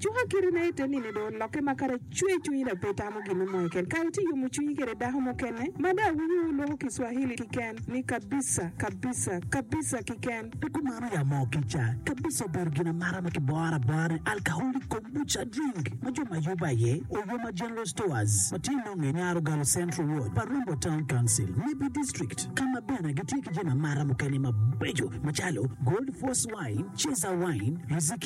Cuka kite ma ite nino dong olokke ma kara cwer cwinyi dok pe itamo gin me moyo keken. Kara itye yomo cwinyi kwede dako mukene ma dong awinyo wu lwoko ki Swahili kiken ni kabisa, kabisa, kabisa kiken. Pi kumano ya moo kica. Kabisa obedo gin amara ma kiboro abora ni Alcoholic Kombucha Drink ma jo ma Yuba aye Oyoma General Stores ma tye nonge i Nyar Ogallo Central Ward pa Rombo Town Council, Nibi District, ka ma bene gitye ki jami amara mukene mabeco macalo Gold Force Wine, Ceza Wine, Riziki.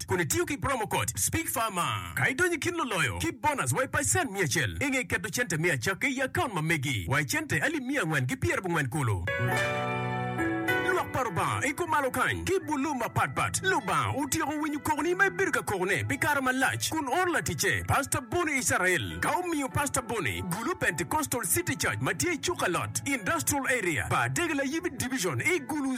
Connect kun itiyo ki promo code SPEAKFARMER ka idonyo i kin luloyo ki bonus wa i pacen miya acel i nge keto cente me acakke i akaunt ma megi wa i cente alip miya angwen ki pyera bongwen kulu. Lwak pa Lubanga i kumalo kany ki bulu mapat pat. Lubanga otyeko winyo kokoni ma ibedo ka kokone pi kare malac kun oro laticce Pastor Bonnie Israel ka omiyo Pastor Bonnie gulu Pentecostal City Church ma tye i Cukalot Industrial Area pa Adegela Yibi Division i Gulu